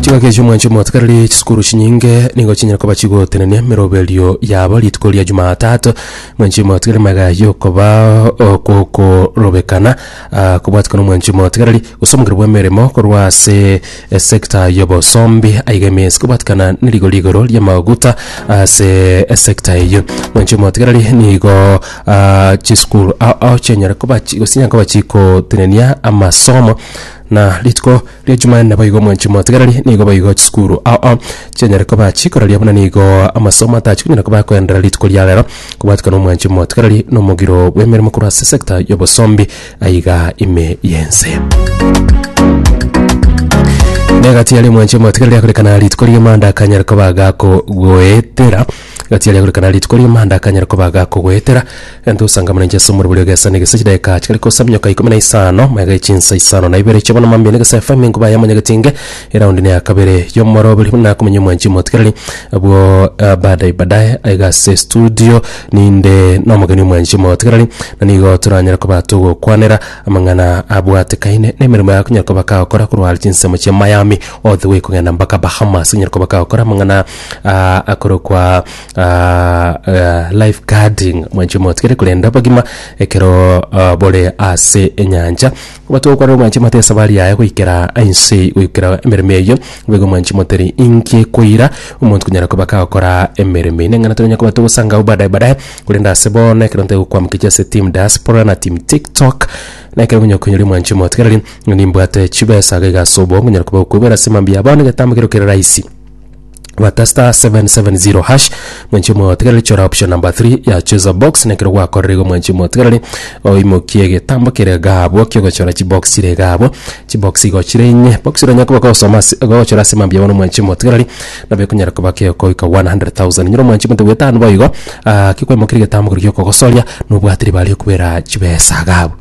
Chingaki echi omwancho omotikariri chisukuru chinyinge nigo chinyara koba chigotenenia miroberio yabo rituko ria jumatatu mwancho omotikariri maega yokoba okokorobekana ah, kobwatikana omwancho omotikariri gose omogero bwa emeremo korwa ase esekta y'obosombi aiga emesi kobwatikana nerigo rigoro ri'amaguta ase esekta eyio mwancho omotikariri nigo ah, chisukuru ao ao chinyara koba chi- gose chinyara koba chigotenenia amasomo Na rituko ria Jumanne boigo mwanchi motigereri nigo boigo chisukuru ao chianyare koba chikoraria buna nigo amasomo atachikonyara koba koenderera rituko ria rero kobwatika na omwanchi motigereri na omogiro bw'emeremo korwa ase sector y'obosombi aiga ime y'ense. Negati yaria omwanchi motigereri akorekana rituko ria Monday akanyare koba gakogoetera Gati aria gorekana rituko ri'omanda akanyara koba agakogoetera, egento osangamane inche ase omorwori ogesa na egese chidaeka chikare kosa minyoka ikomi na isano, magega ya chinsa isano na ibere chi'obonama mambia na egesa efeime enkuba yamo nyegetinge, eraundi neye ya kabere y'omoroberi buna akomenya omwanchi omotikereri. Abwo eh, baadaye baadaye aiga ase studio ninde nomogeni omwanchi omotikereri, na nigo toranyare koba togokwanera amang'ana abwatekaine nemeremo yaye akonyara koba kagokora korwa are chinsemo chia Miami all the way kogenda mpaka Bahamas, onyare koba kagokora amang'ana ah, akorokwa ah, ah, life guarding mwanche motigere korenda abagima ekero ah, bore ase enyancha batogokora mwanche mote esabari yaye goikera ainse goikera emeremo eyo bego mwanche moteri inki ekoira omonto konyara koba kagokora emeremo eye neng'ana tonya koba togosangao badaye badaye korende ase bono ekero ntegokwamokechi ase team diaspora na team tiktok na ekero onye okonyori mwanche motigereri nimbwate chibesa gaiga ase obongo nyara koba gokoibera ase mambia bono egetambo kero kere rahisi bata star 770 hash mwenche motigereri chora option number 3 ya choose a box nekero gwakorire igo mwenche motigereri oimokie egetambo kere iga abwo kiogochora chibox chire iga abwo chibox igo chire inye box ero nyakoba gosoma ase gochora ase mambia bono mwenche motigereri nabo ekonyara koba kegokoika 100,000 nyiro mwenche monto bwetano boigo ah kekwaimokeria egetambo keri giokogosoria nobwate ribare okobera chibesa iga abwo.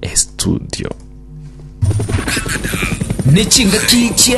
estudio. Nechingaki chia